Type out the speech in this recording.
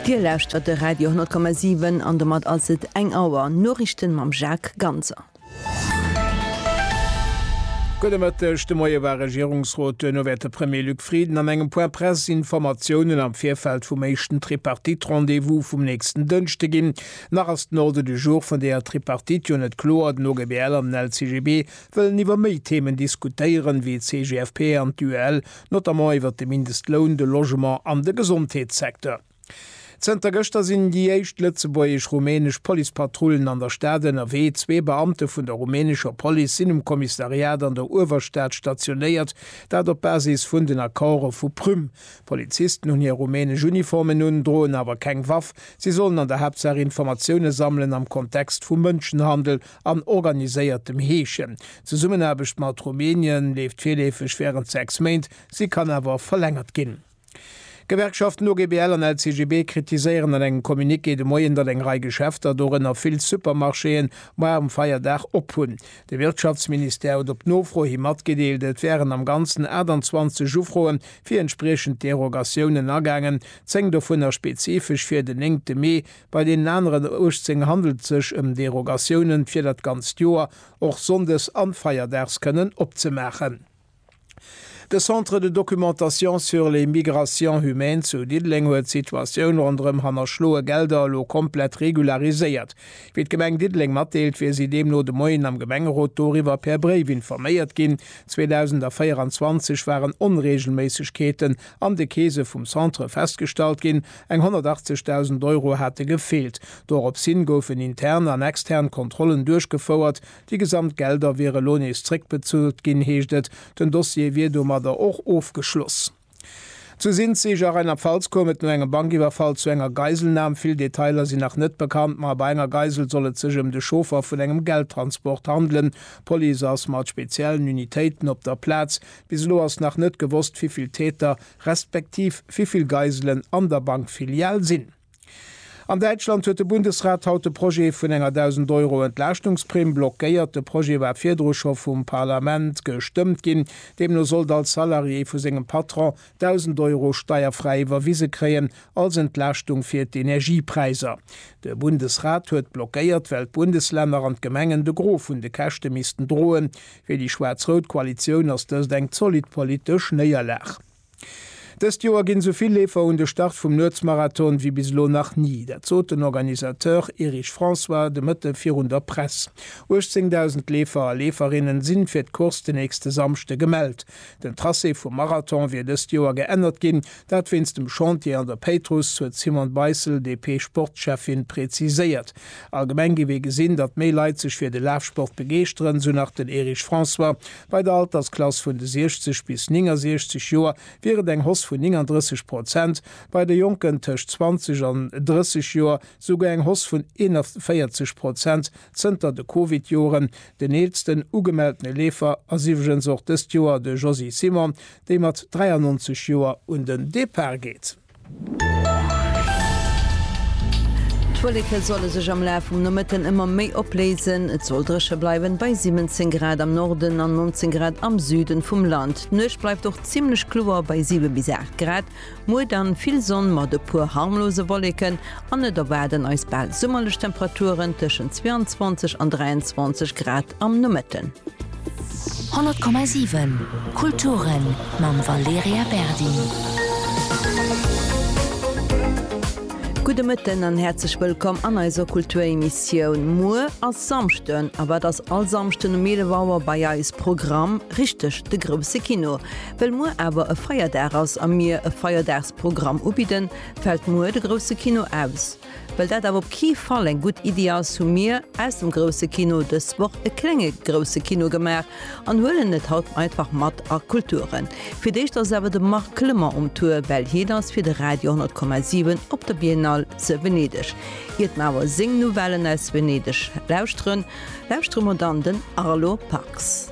Dir lauschtert de Radio 10,7 an domat ass et 1 Auer. Noriichten mam Jacques Ganser. Gudde Mëtteg, de Moie war Regierungsrot, duerno wäert de Premier Luc Frieden an engem Point Presse Informatiounen am Virfeld vum éischten Tripartite-Rendez-vous vum nächsten Dënschde ginn. Nach ass den Ordre du jour vun deeër Tripartite jo net kloer. Den OGBL an den LCGB wëllen iwwer méi Themen diskutéieren, wéi d'CGFP an d'UEL notamment iwwert de Mindestloun, de Logement an de Gesondheetssecteur. Zënter gëschter sinn déi éischt lëtzebuergesch-rumänesch Policepatrullen an der Stad ënnerwee. Zwee Beamte vun der rumänescher Police sinn um Kommissariat an der Uewerstad stationéiert, dat op Basis vun den Accorde vu Prüm. D'Polizisten hunn hir rumänesch Uniformen un, droen awer keng Waff. Si sollen an der Haaptsaach Informatioune sammelen am Kontext vum Mënschenhandel. an organiséiertem Heeschen. D'Zesummenaarbecht mat Rumänien leeft virleefeg wärend 6 Méint, si kann awer verlängert ginn. D'Gewerkschaften OGBL an LCGB kritiséieren an engem Communiqué de Moien, datt eng Rei Geschäfter, dorënner vill Supermarchéen, moie um Feierdag op hunn. De Wirtschaftsministère huet op Nofro hi matgedeelt, et wären am Ganzen 28 Ufroe fir entspriechend Derogatiounen agaangen, 10 dovunner spezifesch fir den 9 Mee, Bei deenen aneren 18 handelt et sech ëm Derogatiounen, fir dat ganzt Joer, och sonndes an feierdags, kënnen opzemaachen. De Centre de documentation sur les migrations humaines zu Diddeleng huet d'Situatioun ronderëm hannerschloe Gelder elo komplett regulariséiert. Wéi d'Gemeng Diddeleng matdeelt, wier si deemno de Moien am Gemengerot doriwwer per Bréif informéiert ginn. 2024 waren Onreegelméissegkeeten an de Keese vum Centre festgestallt ginn, Eng 180.000 Euro hate gefeelt. Dorops hin goufen intern an extern Kontrollen duerchgefouert. Déi gesamt Gelder wiere lo nees zréckbezuelt ginn, heescht et. Den Dossier wier domadder och ofgeschloss. Zu Sinzig a Rheinland-Pfalz koum et no engem Bankiwwerfall zu enger Geiselnam. Vill Detailer sinn nach net bekannt, ma bei enger Geisel soll et sech ëm de Chauffer vun engem Geldtransport handelen. D'Police ass mat speziellen Unitéiten op der Plaz. Bis elo ass nach net gewosst, wéi vill Täter respektiv wivill Geiselen an der Bankfilial sinn. An Däitschland huet de Bundesrat haut de Projet vun enger 1.000 Euro Entlaaschtungs-Primm blockéiert. De Projet war virdru scho vum Parlament gestëmmt ginn. Deemno sollt all Salarié vu sengem Patron 1.000 Euro steierfräi iwwerwise kréien als Entlaaschtung fir d'Energiepräiser. De Bundesrat huet blockéiert, well d'Bundeslänner an d'Gemengen de Gros vun de Käschte missten droen. Fir déi schwaarz-rout Koalitioun ass dëst eng zolidd politesch Néierlag. Dëst Joer ginn esou vill Leefer un de Start vum Nuetsmarathon wéi bis elo nach ni. Dat sot den Organisateur Erich François de Mëtte virun der Press. 18.000 Leefer a Leeferinnen sinn fir d'Course den nächste Samschde gemellt. Den Tracé vum Marathon wier dëst Joer geännert ginn, dat wéinst dem Chantier an der Péitruss, huet d'Simone Beissel, DP-Sportschäffin, präziséiert. Allgemeng gi mir gesinn, datt méi Leit sech fir de Lafsport begeeschteren, esou nach den Erich François. Bei der Altersklass vun de 60 bis 69 Joer wier et eng Hoss vun 39 Prozent, bei de Jonken tëscht 20 an 30 Joer esouguer eng Hoss vun 41 Prozent. Zënter de Covid-Joren den eelsten ugemeltene Leefer ass iwwregens och dëst Joer de Josy Simon, dee mat 93 Joer un den Depart geet. D'Wulleke solle sech am Laf vum Nomëtten ëmmer méi opléisen. Et soll dréche bleiwen, bei 17 Grad am Norden an 19 Grad am Süden vum Land. D'Nuecht bleift och zimmlech kloer, bei 7 bis 8 Grad. Muer dann vill Sonn mat e puer harmlose Wolleken an et erwaarden eis bal summerlech Temperaturen tëschent 22 an 23 Grad am Nomëtten. 100,7 Kulturen mam Valerija Berdi. Gudde Mëtten an häerzlech wëllkomm an eiser Kulturemissioun. Muer ass Samschden a wat ass all Samschden um 11 Auer bei eis Programm? Richteg, de Grouse Kino. Well muer awer e Feierdag ass a mir e Feierdagsprogramm ubidden, fält muer de Grousse Kino aus. Well dat awer op kee Fall eng gutt Iddi ass, hu mir aus dem Grousse Kino dës Woch e klenge Grousse Kino gemaach an huelen et haut einfach mat a Kulture. Fir d'éischt ass awer de Marc Clement um Tour, well hien ass fir de Radio 100,7 op der Biennale ze Venedeg. Iert mer awer seng Nouvellen aus Venedeg lauschteren, lauschtere mer dann den Arlo Parks.